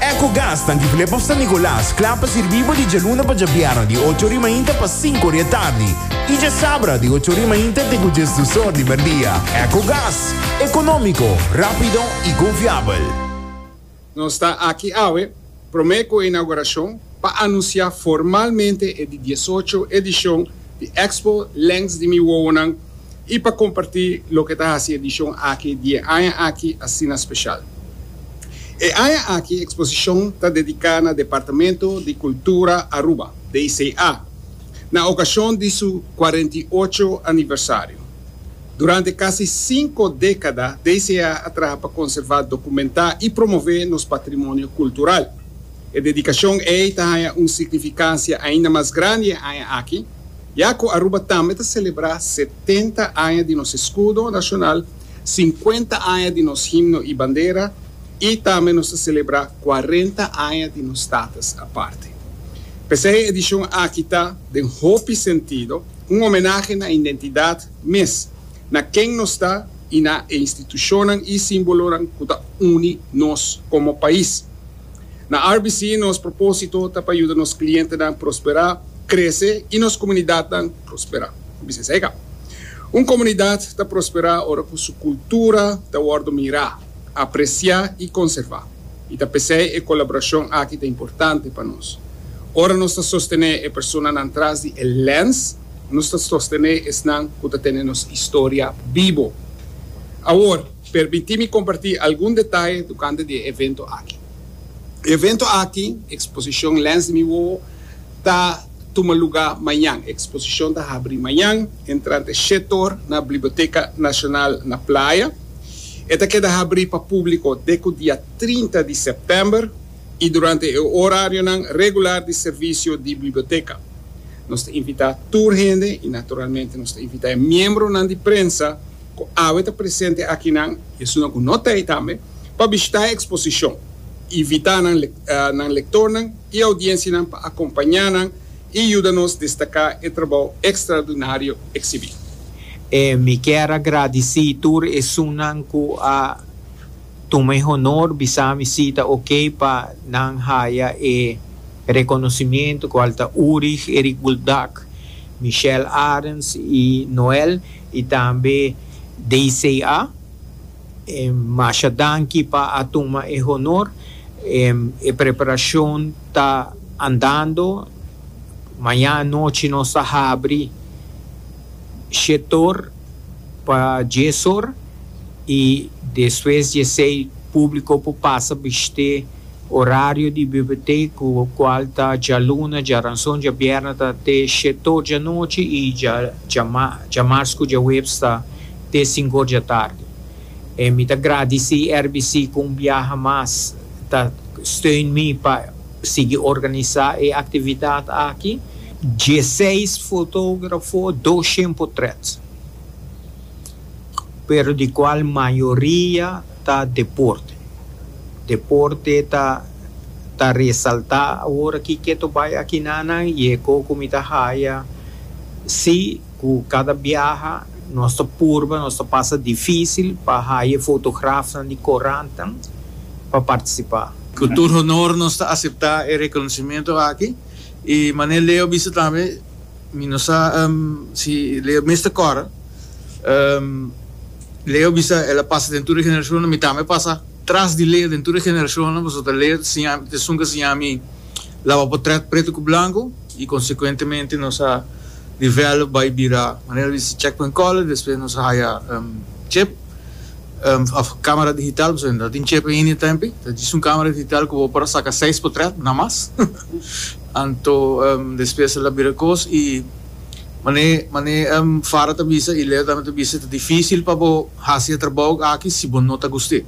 Ecogas ta difilé pa San Nicolas, kla pa sirbí bo di djaluna pa djabierna di ocho ori mainta pa sinku ori e tardi i djasabra di ocho ori mainta te ku djes dus or di merdia. Ecogas, ekonómiko, rápido i konfiabel. Nos ta aki awe promé ku e inaugurashon pa anunsiá formalmente e di diesocho edishon di Expo Lèns di Mi Wowonan i pa kompartí loke ta hasi edishon aki di e aña aki asina speshal. E aña aki eksposishon ta dediká na Departamento di Kultura Aruba, DICA, na okashon di su kuarenta i ocho aniversario. Durante kasi sinku dékada DICA a traha pa konservá, dokumentá i promové nos patrimonio kultural. E dedikashon ei ta haña un signifikansia ainda mas grandi e aña aki, Ya cu Aruba tambe ta celebra setenta aña di nos escudo nacional, cincuenta aña di nos himno y bandera y tambe nos ta celebra cuarenta aña di nos status aparte. P'esey e edicion aki ta, den hopi sentido, un homenahe na identidad mes, na ken nos ta y na e institucionnan y simbolonan cu ta uni nos como pais. Na RBC nos propósito ta pa yuda nos klientenan prosperá, krese i nos komunidatnan prosperá. Ku bisnis ei ka? Un komunidat ta prosperá ora ku su kultura ta wòrdu mirá, apresiá i konservá. I ta p'esei e kolaborashon aki ta importante pa nos. Ora nos ta sostené e personanan tras di e lèns, nos ta sostené esnan ku ta tene nos historia bibo. Awor. Permití mi kompartí algun detaye tokante di e evento aki. E evento aki, Eksposishon Lens di mi Wowo, ta tuma lugá mañan. E eksposishon ta habrí mañan entrante shet or na Bliboteka Nashonal na Playa. E ta keda habrí pa públiko dek ku dia trinta di sèptèmber i durante e orarionan regular di servisio di Bliboteka. Nos ta invitá tur hende i naturalmente nos ta invitá e miembronan di prensa, ku awe ta presente akinan i esunnan ku no ta ei tambe, pa bishitá e eksposishon. Invitá nan nan lektornan i audiensianan pa akompañá nan i yuda nos destaká e trabou ekstraordinario eksibí. Mi kier a gradisí tur esunnan ku a tuma e honor bisá mi si ta okey pa nan haya e rekonosimiento, kual ta Urig Erik Buldak, Michelle Arends i Noel. Y tambe DCA, masha danki pa a tuma e honor. E preparacion ta andando. Mañana anochi nos ta habri shetor pa diesor y despues diesei publico por pasa bishte. Orario di Bibliotek ku kual ta djaluna, djaranson, djabierna ta te shetor djanochi i djamars ku djaweps ta te sinkor djatardi. E mi ta gradisí RBC ku un biaha mas ta steun mi pa sigui organisá e aktividat aki. Dieseis fotografo, doshent potrèt. pero di cual mayoria ta deporte. Deporte ta ta resalta awor aki keto bay akinanan y e co cu mi ta haya si cu cada biaha nos ta purba, nos ta pasa dificil pa haya e fotografnan di corantan pa participa. Cu tur honor nos ta acepta e reconocimiento aki y manera Leo bisa tambe, mi no sa si Leo mes ta cora. Leo bisa, el a pasa den tur e generashonnan, mi tambe a pasa tras di Leo den tur e generashonnan, pasobra ta Leo ta siña mi, ta esun ku a siña mi laba potrèt pretu ku blanku, i konsekuentemente nos a develop bai bira, manera di si, checkpoint color, despues nos a haya chip, of kamera digital, pasobra no ta tin chip ainda e tempi, ta djis un kamera digital ku bo por a saka seis potrèt, na mas, anto despues el a bira kos i. Mane, mane em Farah ta bisa y Leo tambe ta bisa, ta dificil pa bo haci e trabao aki si bo no ta guste.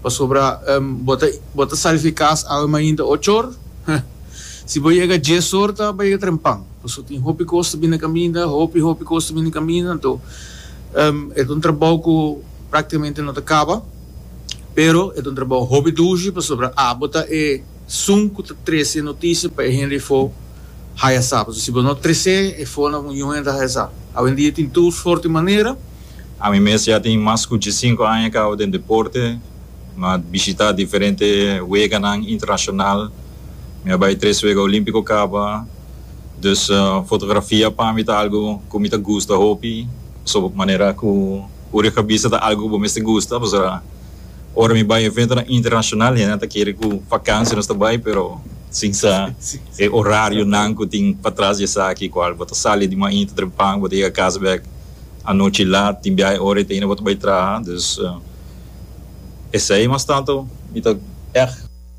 Pasobra em bo ta, bo ta sali di cas awe mainta ocho or, huh, si bo yega dies or ta pa yega trempan, pasobra tin hopi cos ta bini caminda, hopi, hopi cos ta bini caminda, anto em e ta un trabao cu practicamente no ta caba, pero e ta un trabao hopi dushi, pasobra abo ta e. Sun cu ta trece noticia pa e hende fo haya sa. Pasobra si bo no trece e fo na un hende haya sa. Awendia tin tur sorti manera. Ami mes ya tin mas cu diesinco aña cabo den deporte. Mi a bishita diferente weganan internacional. Mi a bay tres wega olimpico caba. Dus fotografia pa mi ta algo cu mi ta gusta hopi. Pasobra manera cu Uri a bisa ta algo cu bo mester gusta pasobra. Ora mi bai eventonan internashonal hendenan ta kere ku vakansia nos ta bai pero sin sa e orarionan ku tin patras di esaki kual bo ta sali di mainta trempan bo ta yega kas bèk anochi lat tin biaha ora yete hinda bo ta bai traha. Dus esei mas tantu mi ta.